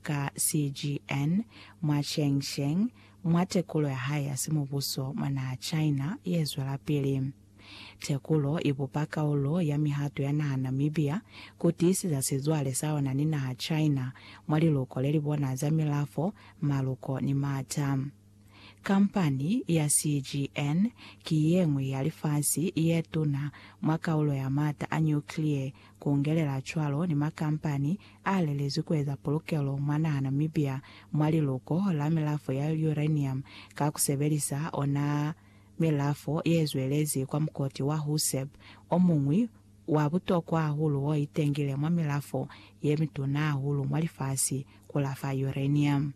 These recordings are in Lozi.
ka CGN, mwa Chengsheng, mwa tekulo ya hae ya simubuso mwa naha China ye zwelapili. Tekulo i bupa kaulo ya mihato ya naha Namibia ku tiiseza sizwale sa ona ni naha China mwa liluko le li bona za milafo, maluko ni m'ata. Kampani ya CGN ki yeñwi ya lifasi yetuna mwa kaulo ya maata a nuclear, kungelela cwalo ni makampani a lelezwi kueza pulukelo mwa naha Namibia mwa liluko la milafo ya uranium ka kusebelisa ona milafo yezwelezi kwa mukoti wa Huseb, omuñwi wa butokwa hahulu oitengile mwa milafo yemituna hahulu mwa lifasi kulafa uranium.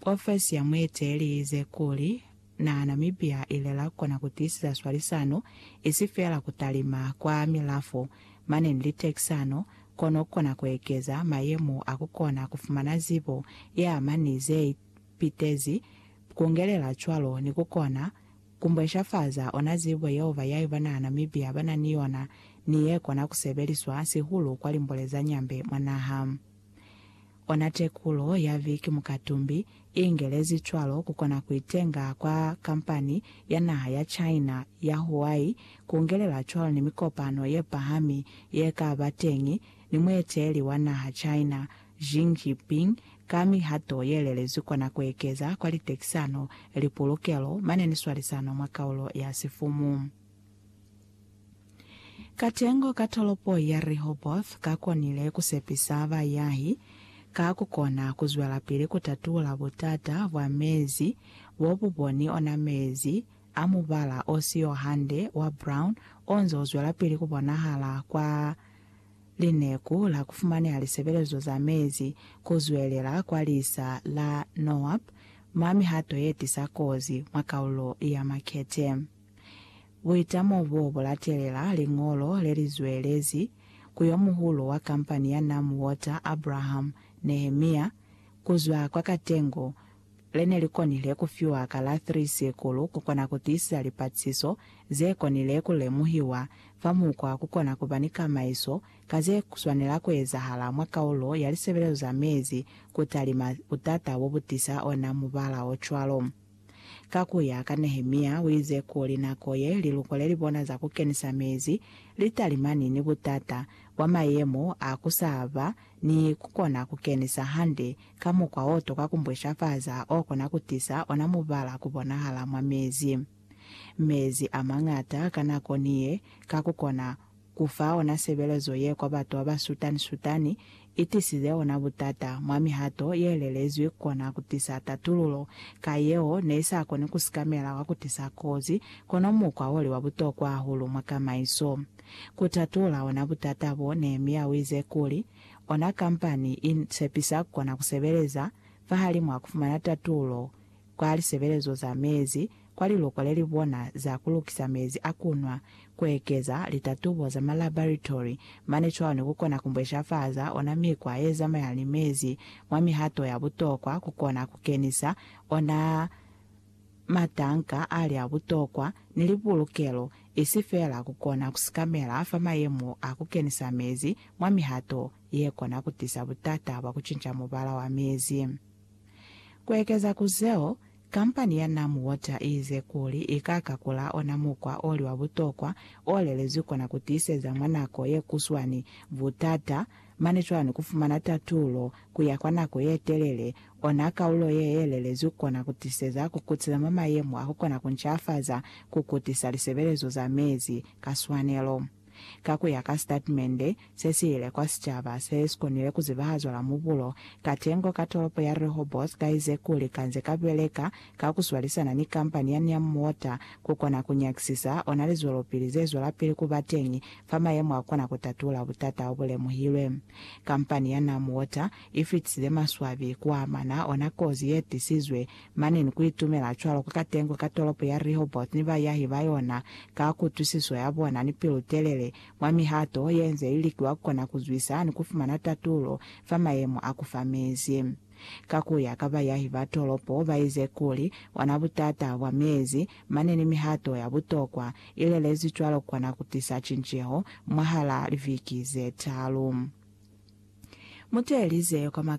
Profesi ya mueteleli iize kuli, Na Namibia ile la kona ku tiisiza swalisano, isi feela ku talima kwa milafo, mane ni litekisano, kono kona ku ekeza mayemo a ku kona ku fumana zibo ye ama ni ze ipitezi, kungelela cwalo ni ku kona ku mbweshafaza ona zibo yeo bayahi ba naha Namibia ba na ni yona ni ye kona ku sebeliswa sihulu kwa limbole za nyambe mwa naha. Ona tekulo ya Vic Mukatumbi i ingelezi cwalo ku kona ku itenga kwa kampani ya naha ya China ya Huai ku ungelela cwalo ni mikopano ye pahami ye ka ba teñi ni mueteeli wa naha China Xi Jinping ka mihato ye lelezwi kona ku ekeza kwa litekisano, lipulukelo, mane ni swalisano mwa kaulo ya sifumu. Katengo ka tolopo ya Rehoboth ka konile ku sepisa bayahi ka ku kona ku zwelapili ku tatula butata bwa mezi bo bu boni ona mezi a mubala o siyo hande wa brown o nze u zwelapili ku bonahala kwa lineku la ku fumaneha lisebelezo za mezi ku zwelela kwa lisa la Noab mwa mihato ye tisa kozi mwa kaulo ya Makete. Buitamo bo bu latelela liñolo le li zwelezi ku yo muhulu wa kampani ya Nam Water, Abraham Nehemiah, ku zwa kwa Katengo, le ne li konile ku fiwa ka la 3 Sikulu ku kona ku tiisisa lipatisiso ze konile ku lemuhiwa fa mukwa ku kona ku ba ni kamaiso ka ze swanela ku ezahala mwa kaulo ya lisebelezo za mezi ku talima butata bo bu tisa ona mubala o cwalo. Ka ku ya ka Nehemia, u ize kuli nako ye liluko le li bona za ku kenisa mezi li talimani ni butata bwa mayemo a ku sa ba ni ku kona ku kenisa hande ka mukwa o tuka ku mbweshafaza o kona ku tisa ona mubala ku bonahala mwa mezi. Mezi a mañata ka nako ni ye ka ku kona Ku fa ona sebelezo ye kwa batu ba ba sutani-sutani i tisize ona butata mwa mihato ye lelezwi ku kona ku tisa tatululo ka yeo ne i sa koni ku sikamela kwa ku tisa kozi, kono mukwa wo li wa butokwa hahulu mwa kamaiso ku tatula ona butata bo. Nehemia u ize kuli, Ona kampani i sepisa ku kona ku sebeleza fahalimwaa ku fumana tatululo kwa lisebelezo za mezi kwa liloko lelibona za kulukisa mezi a kunwa, kuekeza litatubo za malabaritory mane cwalo ni kukona kumbweshafaza ona mikwa yezamaya ni mezi mwa mihato ya butokwa kukona kukenisa ona matanka ali a butokwa ni lipulukelo isi feela kukona kusikamela fa mayemo a kukenisa mezi mwa mihato yekona kutisa butata bwa kucinca mubala wa mezi. Ku ekeza ku zeo, kampani ya Nam Water i ize kuli i ka kakula ona mukwa o li wa butokwa o lelezwi kona ku tiiseza mwa nako ye kuswani butata, mane cwani ku fumana tatulo ku ya kwa nako ye telele. Ona kaulo ye ye lelezwi kona ku tiseza ku kutisa mwa mayemo a ku kona ku ncafaza ku kutisa lisebelezo za mezi ka swanelo. Ka ku ya ka sitatmende se si ile kwa sicaba se si konile ku zibahazwa la mubulo, katengo ka tolopo ya Rehoboth ka ize kuli ka nze ka beleka ka ku swalisana ni kampani ya Neum Water ku kona ku nyakisisa ona lizwelopili ze zwelapili ku ba teñi fa mayemo a kona ku tatula butata o bu lemuhilwe. Kampani ya Neum Water i fitisile maswabi ku amana ona kozi ye tisizwe Mane ni ku itumela cwalo ku ka tengwe ka tolopo ya Rehoboth ni bayahi ba yona, ka kutwisiso ya bona ni pilu-telele, mwa mihato ye nze i likiwa ku kona ku zwisa ni ku fumana tatulo fa mayemo a ku fa mezi. Ka ku ya ka bayahi ba tolopo, ba ize kuli, Ona butata bwa mezi, mane ni mihato ya butokwa i lelezi cwalo ku kona ku tisa cinceho mwahal'a liviki ze talu. Muteelize kwa maka.